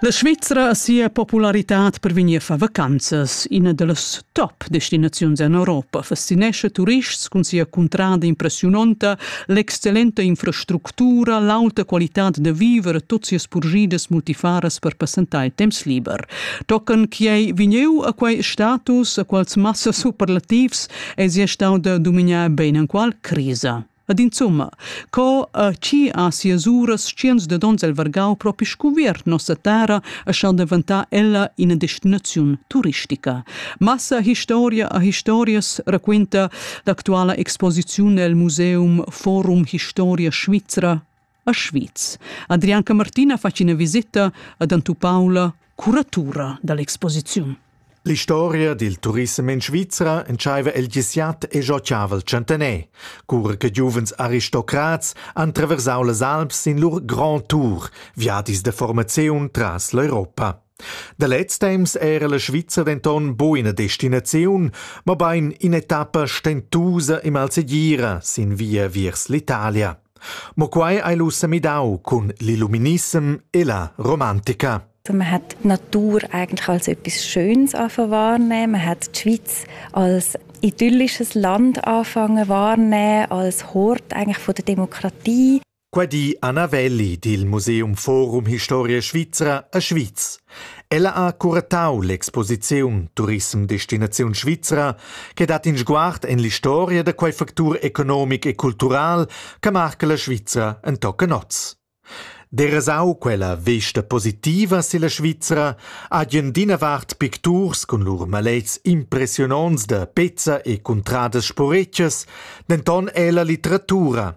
La Svizra ha sia popularitad per vegnir a far vacanzas. Ina da las top destinaziuns en Europa fascinescha turists cun sia cuntrada impressiunonta, l'excellenta infrastructura, l'auta qualitad da viver e tut sias purgidas multifaras per passentar il temps liber. Tocan quai vegniu a quai status, a quals massa superlativs è sia stau da dominar ben en qual crisa. Ed insomma, co uh, chi ha sias uras tschients de dons el vargau propi scuviert nossa terra e schau deventà ella ina destinaziun turistica. Massa historia a historias raquenta l'actuala exposiziun el Museum Forum Historia Svizra a Schwyz. Adrian Camartina fa ina visita ad Antupaula, curatura dall'exposiziun. L'historia dil turissem in Svizra entscheiva el disiat e giò chaval centener, cura che giuvens aristocrats han traversau las Alps in lur grand tour, viadis de formaziun tras l'Europa. Da lez temps era la Svizra denton bu ina destinaziun, mobein in'etappa stentusa e malsegira sin via viers l'Italia. Mo quei ei lu semidau cun l'illuminissem e la romantica. Man hat Natur eigentlich als etwas Schönes anfangen wahrnehmen. Man hat die Schweiz als idyllisches Land anfangen wahrnehmen, als Hort eigentlich von der Demokratie. Qua di Anna Welli dil Museum Forum Historia Svizra a Schwyz. Ella ha curatau l'exposiziun Turism Destinaziun Svizra che dat in sguard en l'historia da quei factur economic e cultural che marca la Svizra en tochen oz. Derasau quella vesta positiva silla Svizra hagen d'ina vart picturs cun lur malets impressiononts da pezza e cuntradas sporetschas, denton è la litteratura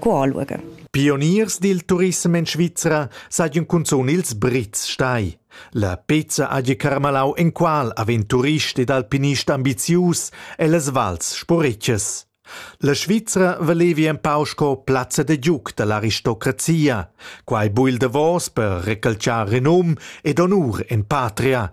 Guarlurge. Pioniers dil turissem en Svizra sajan cunzun ils Brits stai. La pezza hagi carmalau enqual avent turist ed alpinist ambizius ellas vals sporetschas. La Svizra valevi empau sco plazza de giuc dall'aristocrazia. Quei bui il davos per recalciar renum ed honur en patria,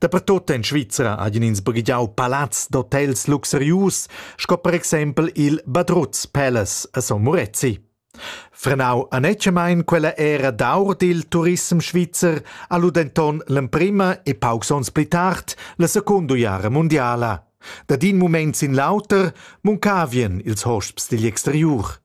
Dapertut en Svizra hajan ins baghegiau palazs d'hotels luxurius, sco per exempel il Badruz Palace a Son Murezi. Frenau anetgamein quella era d'aur dil turism svizzer ha lu denton l'emprema e paucs onns pli tard la secunda jara mundiala. Da din mument sin l'auter muncavien ils hosps digl exteriur.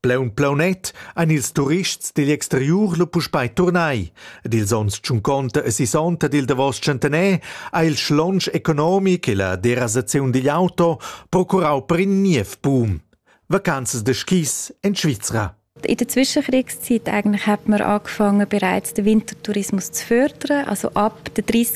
Plaun plaunet ein ils turists digl exteriur lu puspei turnai ed ils onns tschunconta e sisonta dil davos tschentaner ha il schlonsch economic e la derasaziun digl auto procurau per in niev boom. Vacanzas de skis en Svizra. In der Zwischenkriegszeit eigentlich hat man angefangen, bereits den Wintertourismus zu fördern. Also ab den 30.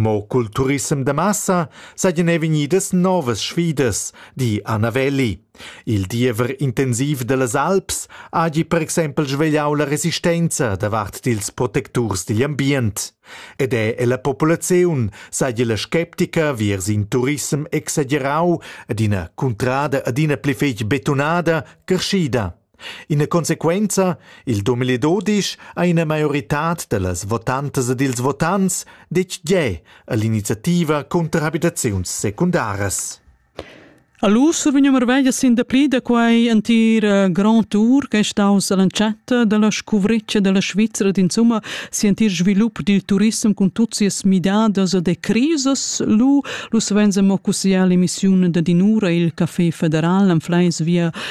Mo cul turissem da massa seigien ei vegnidas novas sfidas, di Anna Welli. Il diever intensiv dallas Alps hagi per exempel svegliau la resistenza davart dils protecturs digl ambient. Ed è ella populaziun seigi la sceptica viers in turissem exagerau ed ina cuntrada adina pli fetg betunada creschida. Ina consequenza, il Dumeli Dodisch ha ina maioritad da las votantas ed ils votants detg gie a l'iniziativa cunter abitaziuns secundaras. Allus vegn mervegia sin dapli da quei entir eh, grand tour che è staus all'entschatta della scuvreccia della Svizzera ed insomma si entir svilup dil turism con tutte sias midadas e crisis lu lu svenza mo cussia l'emissione da dinura il Café Federal am Fleis via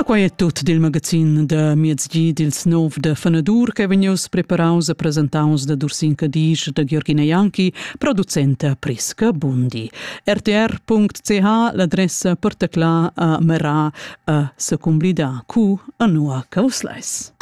E quai è tut dil magazin da miezgi dils nov de Fenadur che vegnius preparaus e presentaus da Dursin Cadisch da Georgina Janki, producenta Prisca Bundi. rtr.ch l'adressa portacla a Mera a secumblida cu a nua causlais.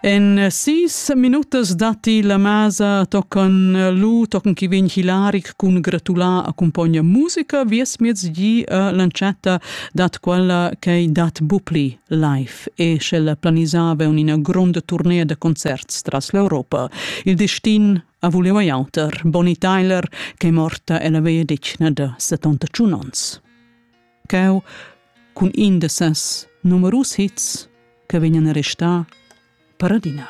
En sis minutas datti la masa tocan lu tocan chi vegn hilaric cun gratular accumpogna musica vies miez gi a l'entschatta dat quella che dat bupli live e sch'ella planisava un'ina gronda tournée da concerts tras l'Europa. Il destin a voleva auter. Bonnie Tyler, che è morta ella veia ditna da 71 ans. Cheu, cun in da ses numerus hits che vegnan a restar, Paradina.